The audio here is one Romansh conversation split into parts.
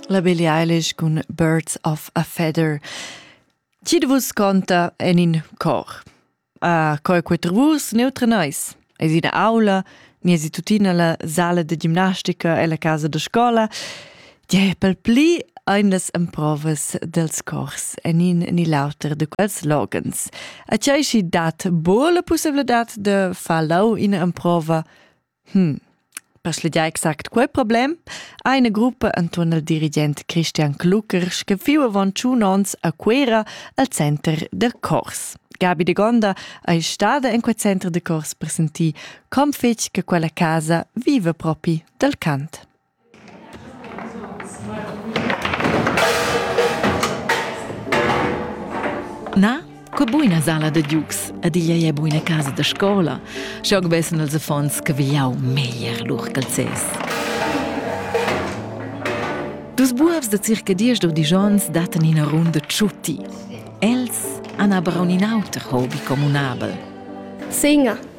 La Billie Eilish cun Birds of a Feather. Ti de vus conta en in cor. A coi quater vus neutre nois. Es ina aula, miesi tutina la sala de gimnastica e la casa de scola. Ti è pel pli Eindas emprovas dels cors en in ni l'auter de quels logens. A tgei si dat bo la possibilità de far lau in emprova Hm. Per schlegiar exact quei problem ha ina gruppa enturn il dirigent Christian Klucker scaffiu avon tschun onns a Cuera al center da cors. Gabi de Gonda ei stada en quei center de cors per sentir com fetg che quella casa viva propi dal cant. Na, che buina sala da giugs ed igl ei buina casa da scola, schau vessen els affons che vigliau meglier lur calzès. Dus buobs da circa diesch u disch onns dattan ina runda tschutti. Els han aber aunc in auter hobby communabel. Singa.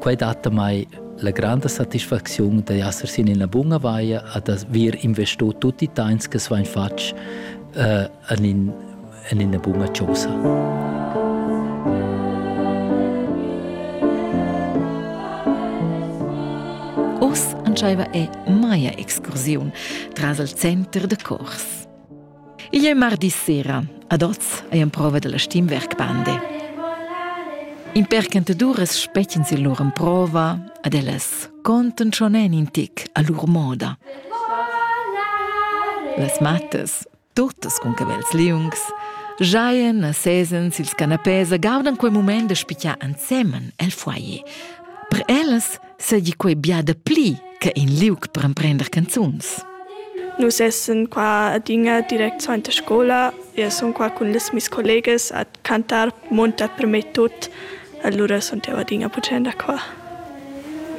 Quai dat damai la granda satisfacziun da esser sin ina bunga vaia e da vir investo tutti i temps che svain fatg uh, en, in, en ina bunga chosa. Oz entscheiva è Maya Excursiun tras il center da cors. Igl è mardi sera. Ad oz ei emprova dalla Stimmwerk Bande. In percantaduras spetgan sin lur emprova, ad ellas contan schon en in tic a lur moda. Las mattas, tuttas con cavels liungs, giaien a sesen sils canapés e gaudan quei moment da spicar ensemen el foyer. Per ellas seigi quei bia dapli che in liug per emprender canzuns. Nus essen qua adina direct suenter scola e sun qua cun les mis collegas a cantar monta per me tut. Allura sun jeu adina puccenda qua.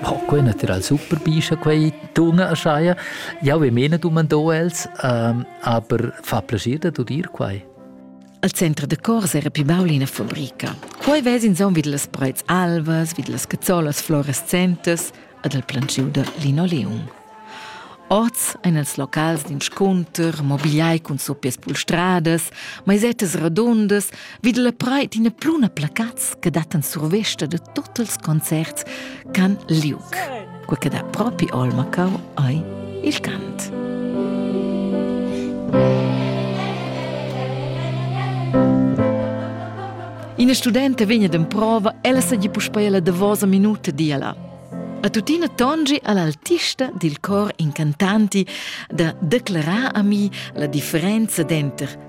Oh, quei natural super bischa quei tuna erscheia. Ja, we mena du man do els, ähm, aber fa piacere da dir quai. Al center da cors era pli baul ina fabrica. Quei vess insomma vid las preits alvas, vid las cazzolas fluorescentes ad el plantschiu da linoleum. Oz ein els locals d'inscunter, mobiliai cun suppias pulstradas, maisettas radundas, vid la preit ina pluna placats che dattan survesta da tots els concerts ch'han liug. quei che dà propi olma cau ei il cant. Ina studenta vegna d'emprova, ella segi puspei la davosa minuta diala. A tuttina tongi all'altista dil cor incantanti da declarar a mi la differenza denter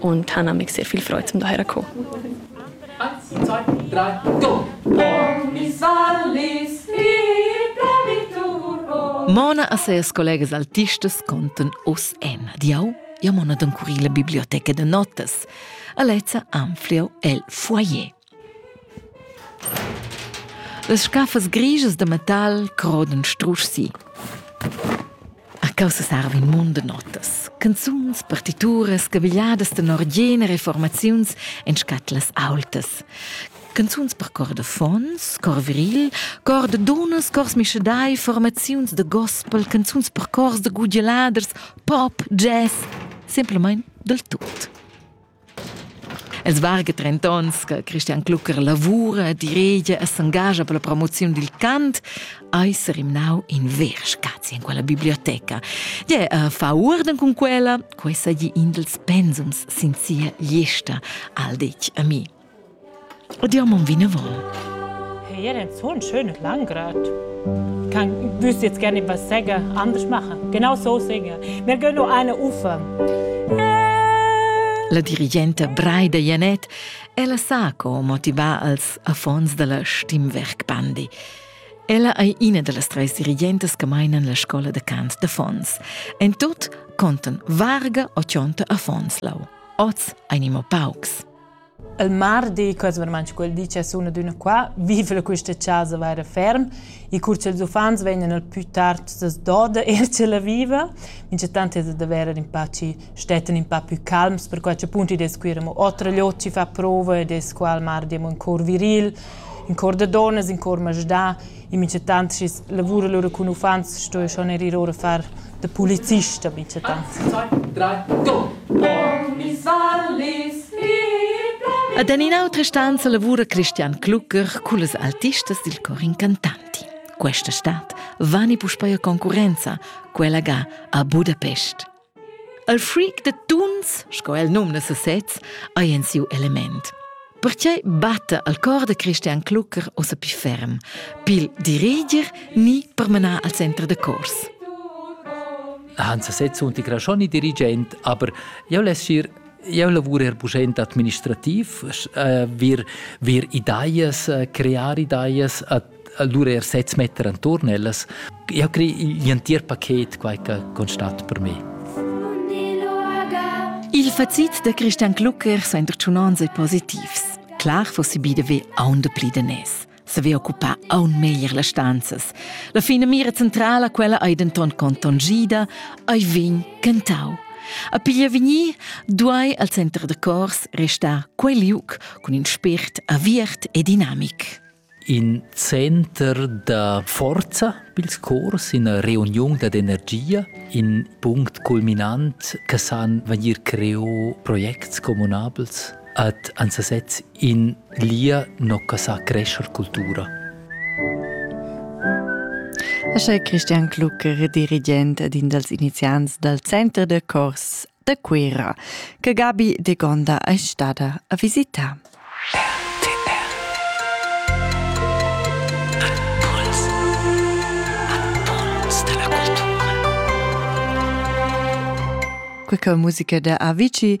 und han amig sehr viel Freude zum daher kommen. Eins, zwei, drei, go! Mona a ses collegas altistas contan oss Emma di au ja mona don curila biblioteca de notas. Alezza anfliau el foyer. Las scaffas grischas da metal crodan strusch si. A causa sarva in mund da notas. Canzuns, partituras, cavigliadas tenor gener e formaziuns en scatlas aultas. Canzuns per cor da fons, cor viril, cor da dunnas, cors mischadai, formaziuns da gospel, canzuns per cors da gudialaders, pop, jazz, semplamain dal tut. Els varga trent'onns che Christian Klucker lavura, diregia e s'engascha per la promoziun dil cant, eis rimnau in ver spazi in quella biblioteca. Gie, uh, fa uorden cun quella, quei sa gli in dels pensums sin sia gliesta, al detg a mi. O diamond vinavon. Hier ein zun schön und langgrad. Kann wüsst jetzt gerne was sagen, anders machen. Genau so singen. Wir gehen noch eine Ufer. La dirigenta Braida Janet ella sa co motivar als affons della Stimmwerkbandi. Ella ei ina dallas treis dirigentas che meinan la scola de cant d'affons. En tot contan varga o cionta affons lau. Oz einimo paucs. Il mardi, quels vermand quel di che sun adüna qua, viva quista chasa vaira ferm e cur cha'ls uffants vegnan al pü tard s'as doda eir ch'ella viva. Minchatant es da verer ün pa chi stettan ün pa pü calms, perquai ch'appunto id es quir amo otra gliot chi fa prova ed es qua al mardi amo ün cor viril, ün cor da donnas, ün cor masdà In minchatant schi's lavura lura cun uffants sto eu schon eir ir our a far da pulizist a minchatant. Ed en in'autra stanza lavura Christian Klucker cullas artistas dil cor incantanti. Questa stad vani puspei a concurenza, quella ga a Budapest. Il freak da tuns, sco el numna sesez, ei en siu element. Pertgei batta al cor da Christian Klucker ossa pli ferm, pil diriger ni per menar al center da cors? Hans Sez unti Graschoni dirigent, aber eu less sir Eu lavura eir puschent administrativ, eh, wir, wir ideas, eh, crear ideas, allura eir sez metter anturn ellas. Eu crei gl'antier paket quai che constat per me. Il facit da Christian Klucker sain retschiunants e positivs. Clar fossi bide ve aunde pli de nes. saver occupar aun meglier las stanzas. La finamira centrala quella ei denton contontgida, ei vegn cantau. A piglia vegnir duai al center da cors restar quei liuc cun in spért aviert e dinamic. In center da forza pils cors, ina reuniun da energia, in punct culminant che san vegnir creo projects communabels ad ansasets In lia nocca sa crescher cultura. Ascha Christian Klucker, dirigent ed in dals iniziants dal Center da cors da Cuira, che Gabi de Gonda è stada a visitare. quella musica da Avicii